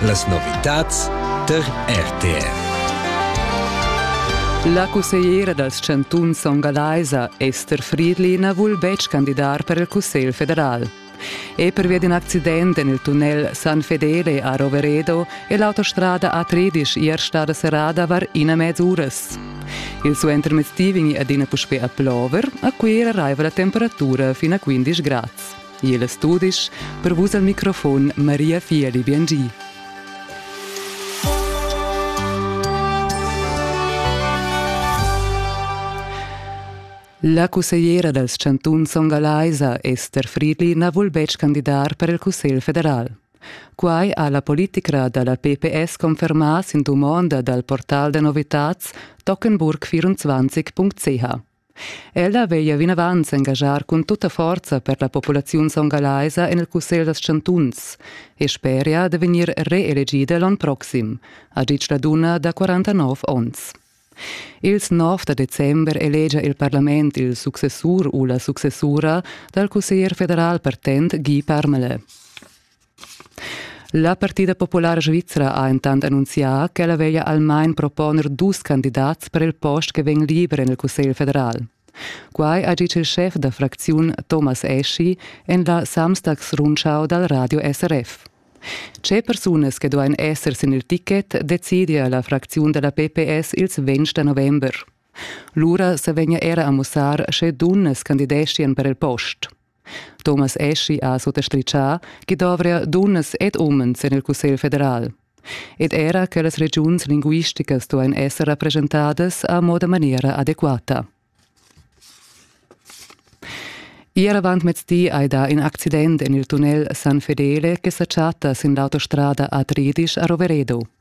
Las novitads tar RTR. La cussegliera dals chantuns ongalaisa Esther Friedliner vul betg candidar per il Cussegl federal. E pervia d'in accident en il tunnel San Fedele a Roveredo è l'autostrada A13 ier stada serrada var ina mez uras. Il suentermezdi vegni adina puspè a plover, a Cuira raiva la temperatura fin a 15 grads. Il studisch per vus al microfon Maria Fieli Biengi. La cussegliera dals chantuns songalaisa Esther Friedli na vul betg candidar per il Cussegl federal. Quai ha la politicra da la PPS confermà sin dumonda dal portal da novitats tockenburg24.ch. Ella veglia vinavant s'engaschar cun tutta forza per la populaziun songalaisa en il Cussegl dals chantuns e speria da vegnir reelegida l'onn proxim, ha ditg la dunna da 49 onns. Ils 9 da december elegia il parlament il successur u la successura dal cusseglier federal partent Guy Parmelin. La Partida populara svizra ha entant annunzià ch'ella veglia almain proponer dus candidats per il post che vegn liber en il Cussegl federal. Quai ha ditg il schef da fracziun Thomas Eschi en la Samstagsrundschau dal radio SRF. Tge persunas che duain esser sin il ticket decidia la fracziun da la PPS ils 20 da november. Lura sa vegnia era a mussar sche dunnas candideschian per il post. Thomas Aschi ha sottastritgà ch'i dovria dunnas ed umens en il Cussegl federal. Ed era che las regiuns linguisticas duain esser rappresentadas a moda maniera adequata. Ier avantmezdi hai dà in accident en il tunnel San Fedele che sa chatta sin l'autostrada a Tridisch a Roveredo.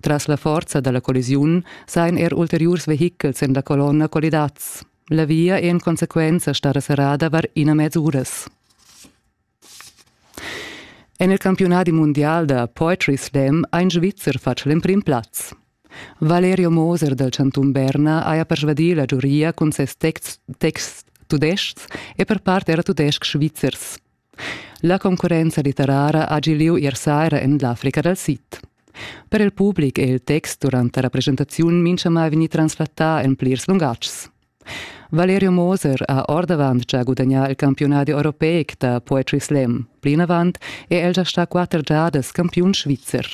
Tras la forza dalla collisiun sain er ulteriurs vehichels en la colonna collidats. La via è en consequenza stata serrada var ina mez uras. En il campionat mundial da Poetry Slam ha in Svizzer fatg l'emprim plaz. Valerio Moser dal Chantun Berna haja persvadì la giuria cun ses texts, texts tudestgs e per part era tudestgs svizzers. La concurrenza litterara ha gi lieu ier saira en l'Africa dal sid. Per il public è il text durant la representaziun mintgamai vegnì translatà en plirs lungatgs. Valerio Moser ha ordavant già gudagnà il campiunadi europeic da Poetry Slam. Plinavant è el gia stà quatter giadas campiun svizzer.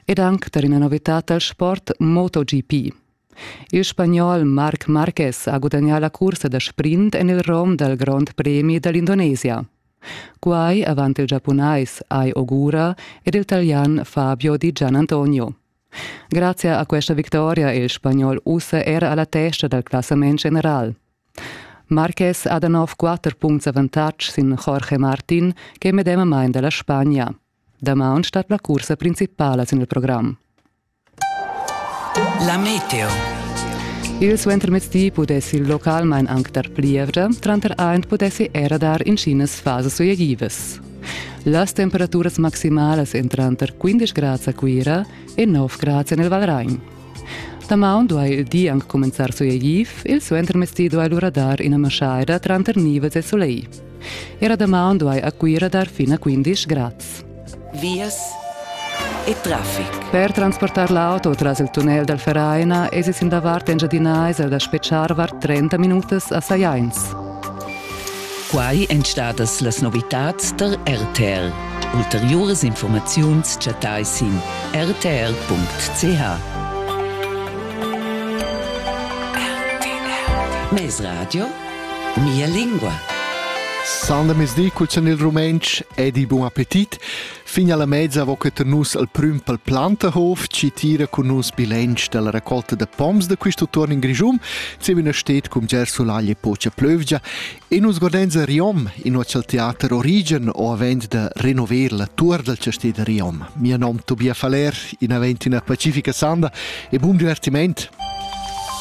Ed anc tar ina novitad dal sport MotoGP. Il spagnol Marc Marquez ha gudagnà la cursa da sprint en il rom dal Grond Premi da l'Indonesia. Quai avant il giapunais Ai Ogura ed il talian Fabio Di Gianantonio. Grazie a questa victoria è il spagnol ussa era alla testa dal classament general. Marquez ha da nov quatter puncts avantatg sin Jorge Martin, che è medemamain da la Spagna. Damaun stat la cursa principala sin il program. La meteo. Il suentermezdi pudessi il localmain anc dar plievgia, tranter aint pudessi era dar inschinas fasas suegivas. Las temperaturas maximalas en tranter 15 grads a Cuira e 9 grads en il Valragn. Damaun duai il di anc cumenzar suegiv, il suentermezdi duai lura dar ina maschaida tranter nivels e soleil. Era damaun duai a Cuira dar fin a 15 grads. Vias e traffic. Per transportar l'auto tras il tunnel dal Vereina èsi sin davart engiadinais da spetgar var 30 minutas a Sajains. Quai èn stadas las novitads tar RTL. Ulteriuras informaziuns chattai sin rtl.ch. RTL. Mes Radio Mia lingua. San da mezdi cul san il rumentsch ed il bun appetit. Fin alla mezza vo che nus al prüm pel Plantahof ci tira con nus bilanc dalla raccolta de poms de questo turn in Grigium, se una stet cum ger sulaglie pocia plövgia e nus godenza Riom in ocial teater Origen o avend de renover la tour del castè de Riom. Mio nom Tobias Faller, in avent una pacifica sanda e buon divertiment.